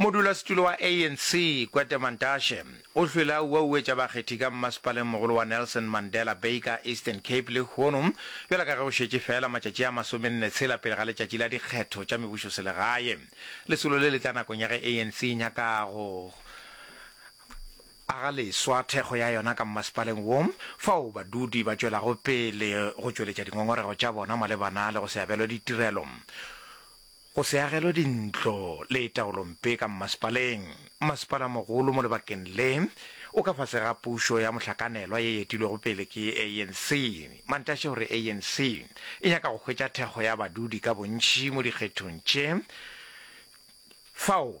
modulasetulo wa anc kwete mantashe o hlwele a uauetša bakgethi ka mmasepaleng mogolo wa nelson mandela bay ka eastern cape lehono bjalo ka ge go šetše fela matšatši a masomenne tshela pele ga letšatši la dikgetho tša mebušoselegae lesolo le le tla nakong ya ge anc e nyaka go aga leswa thekgo ya yona ka mmasepaleng wo, fao badudi ba tšwelago pele go tšweletša dingongorego tša bona malebana le go se abelwe ditirelo, go se agelwe dintlo le taolompe ka mmasepaleng. Mmasepala-mogolo mo lebakeng le o ka fase ga pušo ya mohlakanelwa ye e etilwego pele ke ANC. Mantashe o re ANC e nyaka go hwetša thekgo ya badudi ka bontši mo dikgethong tše fao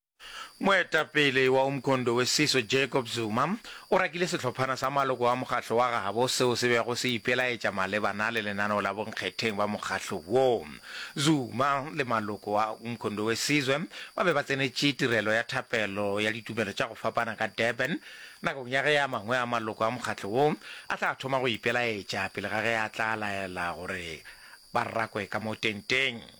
Moetapele wa Umkhondo weSiso Jacob Zuma o rakile sehlophana sa maloko a mokgahlo wa gabo seo se bego se ipelaetša malebana le lenaneo la bonkgetheng ba mokgahlo wo. Zuma le maloko a Umkhondo weSizwe ba be ba tsenetše tirelo ya thapelo ya ditumelo tša go fapana ka Durban nakong ya ge a mangwe a maloko a mokgahlo wo a tla thoma go ipelaetša pele ga ge a tla laela gore ba rakwe ka mo tenteng.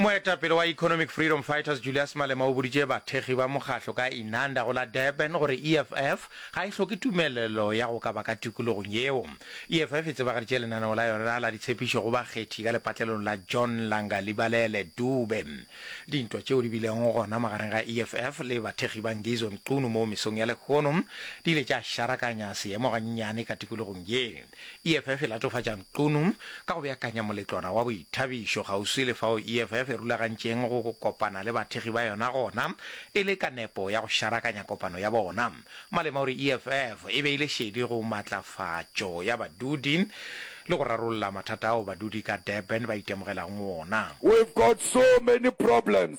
Moetapele wa Economic Freedom Fighters Julius Malema o boditše bathekgi ba mokgatlo ka Inanda go la Durban gore EFF ga e hloke tumelelo ya go ka ba ka tikologong yeo. EFF e tsebagaditše lenaneo la yona la ditshepišo go bakgethi ka lepatlelong la John Langa Libalele Dube. Dintwa tšeo di bilego gona magareng ga EFF le bathekgi ba Ngizwe Mchunu mo mesong ya lehono di ile tša šarakanya seemo gannyane ka tikologong ye. EFF e latofatša Nkunu ka go beakanya moletlwana wa boithabišo kgauswi le fao EFF e rulagantšeng go kopana le bathekgi ba yona gona e le ka nepo ya go šarakanya kopano ya bona. Malema o re EFF e beile šedi go matlafatšo ya badudi le go rarolla mathata ao badudi ka Durban ba itemogelago ona. We've got so many problems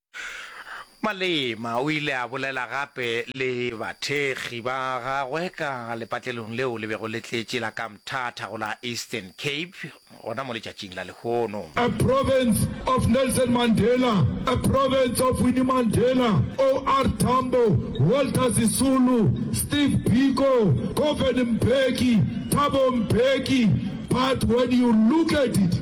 Malema o ile a bolela gape le bathekgi ba gagwe ka lepatlelong leo le bego le tletše la ka Mthatha go la Eastern Cape gona mo letšatšing la lehono. A province of Nelson Mandela, a province of Winnie Mandela, OR Tambo, Walter Sisulu, Steve Biko, Govan Mbeki, Thabo Mbeki, but when you look at it,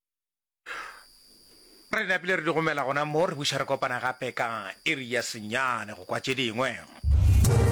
Re napile re di gomela gona mo re buša re kopana gape ka iri ya senyane go kwa tše dingwe.